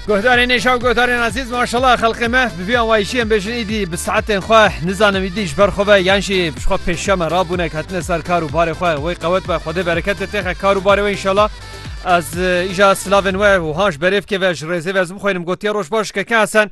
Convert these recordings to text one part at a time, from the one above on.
Guhdarê nêşa û guhdarê nazîz maşallah xelqê me bi vî anwayîşiyên bêjin îdî bi saetên xwe nizanim îdî ji ber xwe ve yan jî bi xwe pêşeme rabûne ketine ser kar û barê xwe wê qewet be xwedê berekete têxe kar û barê wê inşallah ez îja silavên we û han ji berêvkê ve ji rêzê ve ez bixwînim gotiye roj baş keke hesen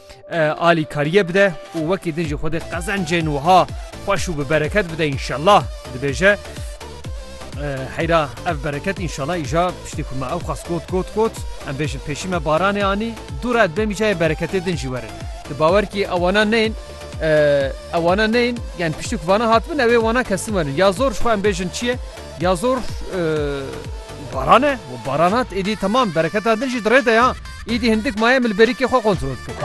alîkariyê bide û wekî din jî xwedê qezencên wiha xweş û bi bereket bide înşellah dibêje heyra ev bereket înşallah îja piştî ku me ew xas got got got em bêjin pêşî me baranê anî dû re demî cayê bereketê din jî werin di bawer kî ewana neyin ewana neyin yani piştî ku vana hatibin ew ê wana kesin werin ya zor ji xwe em bêjin çiye Ya zor baran e û baran hat êdî temam bereketa din jî di rê de ya. Îdî hindik maye min li berîkê xwe kontrol dikir.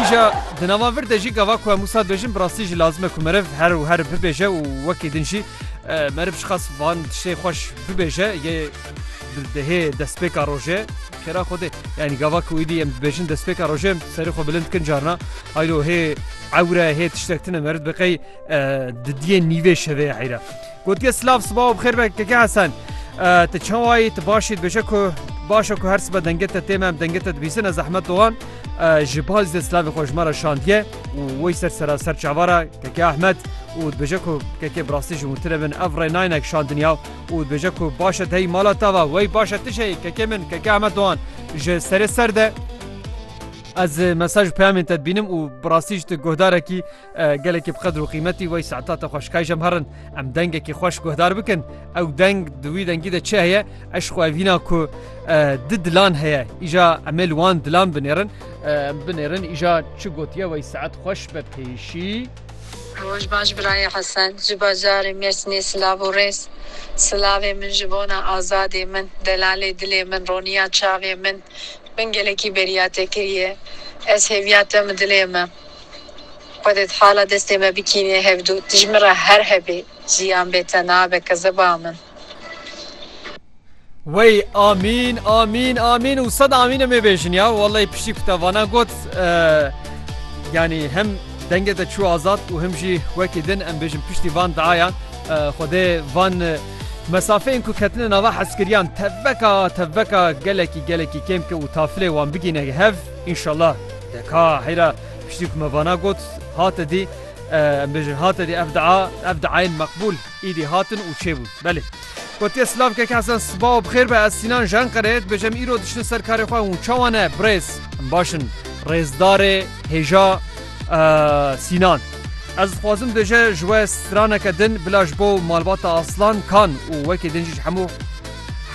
Îja di nava vir de jî gava ku em wisa dibêjin bi rastî jî lazim e ku meriv her û her bibêje û wekî din jî meriv ji qas van tiştê xweş bibêje yê di hê destpêka rojê xêra Xwedê yanî gava ku êdî em dibêjin destpêka rojê em serê xwe bilind dikin carina haylo hê ewre hê tiştek tune meriv dibe qey Di diyê nîvê şevê heyre. Gotiye silav siba û bixêr be keke Hesen. Te çawayî tu başî dibêje ku başa ku her sibe denge te tême em denge te dibîsine zehmet dogan ji bal zê silavê xwe ji me re şandiye û wey ser sera ser çavara keke Ahmet û dibêje ku keke birastî ji witire bin ev rê nayne şandiniya û dibêje ku başe teyî mala tava wey başe tişeyî keke min keke Ahmet dogan ji serê ser de ez mesaj peyamên te dibînim û birastî ji tu guhdarekî Gelekî bi qedr û qîmetî wey saeta te xweş kayjem herin em dengekî xweş guhdar bikin ew deng di wî dengî de çi heye eşq û evîna ku di dilan heye îja emê li wan dilan binêrin binêrin îja çi gotiye wey saet xweş be pêşî. Roj baş birayê Hesen ji bajarê Mêrsînê silav û rêz. Silavê min ji bona azadê min, delalê dilê min, roniya çavê min. Min gelekî beriya te kiriye. Ez hêviya te mi dilê me. Xwedê thala destê me bikînî hevdû tu ji min re her hebî jiyan bê te nabe kezeba min. Wey amîn amîn amîn û sed amîn em ê bêjin ya wellay piştî ku te vana got yanî hem dengê te çû azad û him jî wekî din em bêjin piştî van diayan Xwedê van mesafeyên ku ketine nava hezkiriyan tevbeka tevbeka gelekî gelekî kêm bike û tafilê wan bigîne hev înşallah. Deka heyra piştî ku me vana got hate dî em bêjin hate dî ev dia ev diayên meqbûl îdî hatin û çêbûn. Belê. Gotiye silav keke Hesen siba û bixêr be ez Sînan ji Enqereyê dibêjim em îro diçin ser karê xwe hûn çawa ne birêz. Em baş in rêzdarê hêja Sînan. Ez dixwazim tu jê ji we straneke din bila ji bo malbata Aslan Kan û wekî din jî ji hemû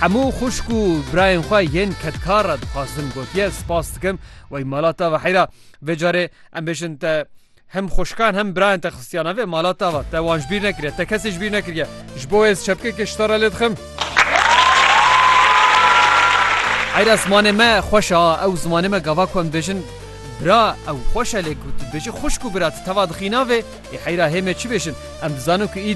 hemû xwişk û birayên xwe yên kedkar re dixwazim gotiye spas dikim Wey mala te ve heyra vê carê em bêjin te hem xweşikan hem birayên te xistiya navê mala te ve te wan ji bîr nekiriye te kesê ji bîr nekiriye ji bo wê ez çepkekê ji te re lê dixim. Heyra zimanê me xweş e ew zimanê me gava ku em dibêjin bira ew xweş e lê ku tu dibêjî xwişk û bira tu teva dixî navê ê heyra hê me çi bêjin em dizanin ku îdî